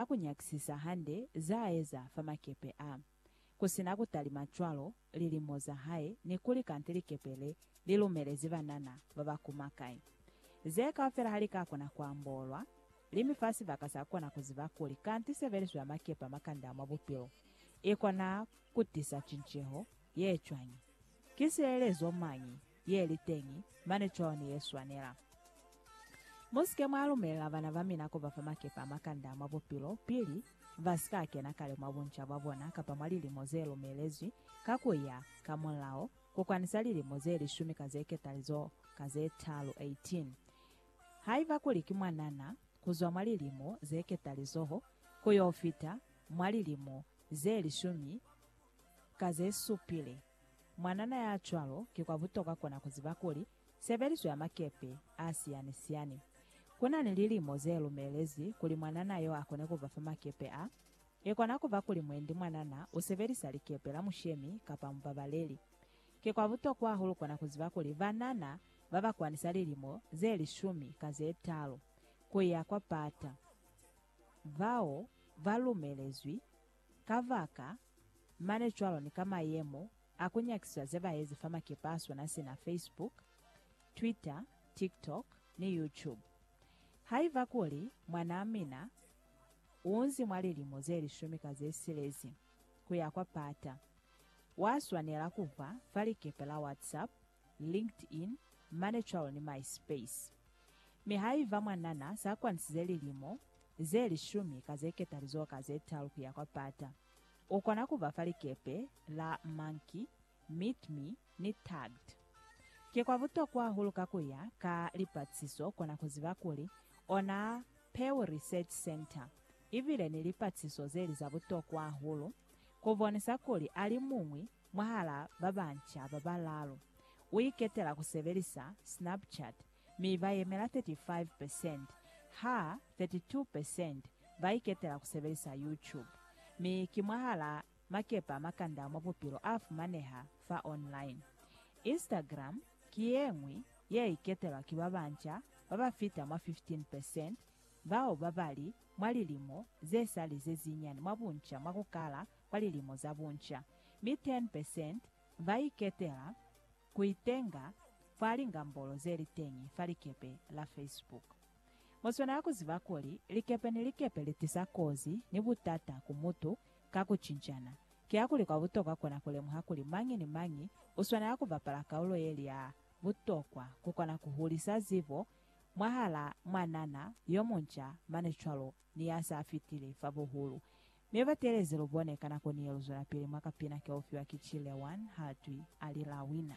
ka ku nyakisisa hande za eza fa makepe a, ku sina ku talima cwalo, lilimo za hae, ni kuli kanti likepe le li lumelezi banana ba ba kuma kai. Ze kaufela ha li ka kona ku ambolwa, li mi fa sibaka sa ku kona ku ziba kuli kanti sebeliso ya makepe a makanda mwa bupilo i kona ku tisa cinceho ye cwañi. Ki sielelezo mañi ye li teñi, mane cwalo ni ye swanela. Mu si ke mwa lumelela bana ba mina ku ba fa makepe a makanda mwa bupilo pili ba si ka kena kale mwa bunca bwa bona kapa mwa lilimo ze lumelezwi ka ku ya ka mulao, ku kwanisa lilimo ze lishumi ka ze ketalizo ka ze talu, 18. Haiba kuli ki mwanana, ku zwa mwa lilimo ze ketalizoho ku yo fita mwa lilimo ze lishumi ka ze supile. Mwanana ya cwalo ki kwa butokwa kona ku ziba kuli sebeliso ya makepe a siyani-siyani ku na ni lilimo ze lumelezi kuli mwanana yo a kone ku ba fa makepe a. I kona ku ba kuli mwendi mwanana u sebelisa likepe la mushemi kapa mubabaleli. Ki kwa butokwa hahulu kona ku ziba kuli banana ba ba kwanisa lilimo ze lishumi ka ze talu ku ya kwa pata bao ba lumelezwi Kabaka, mane cwalo ni ka mayemo a ku nyakisisa ze ba ezi fa makepe a sona sina Facebook, Twitter, TikTok, ni YouTube. Haiba kuli mwanaa mina unzi mwa lilimo ze lishumi ka ze silezi kuya kwa pata, wa swanela kuhwa fa likepe la WhatsApp LinkedIn, ManeCal ni MySpace. Mi haiba mwanana sa kwanisize lilimo ze lishumi ka ze ketalizoho ka ze talu kuya kwa pata, u kona kuba fa likepe la Monkey, Meet Me, ni Tagged. Ki kwa butokwa hahulu ka kuya ka lipatisiso kona kuziba kuli ona Pew Research Center ibile ni lipatisiso zeli za butokwa hahulu kubonisa kuli ali muñwi Mwahal'a ba banca ba balaalu, u iketela ku sebelisa Snapchat mi ba yemela 35 percent, ha 32 percent ba iketela ku sebelisa YouTube. Mi ki mwahal'a makepe a makanda mwa bupilo a fumaneha fa online. Instagram ki ye ñwi ye iketelwa ki ba banca ba ba fita mwa 15 percent bao ba ba li mwa lilimo ze sa li ze zinyani mwa bunca mwa ku kala kwa lilimo za bunca, mi 10 percent ba iketela ku itenga fa lingambolo ze li teñi fa likepe la Facebook. Mu swanela ku ziba kuli likepe ni likepe li tisa kozi ni butata ku mutu ka ku cincana. Kiakuli kwa butokwa kona ku lemuha kuli mañi ni mañi u swanela ku bapala kaulo ye li ya butokwa ku kona ku hulisa zibo mwahal'a mwanana yo munca mane cwalo ni ya s'a fitile fa buhulu Ne ba teelezi lu bone ka nako ni ye lu zwelapili mwa kapina ke u fiwa ki Chile One ha twi, Alila Wina.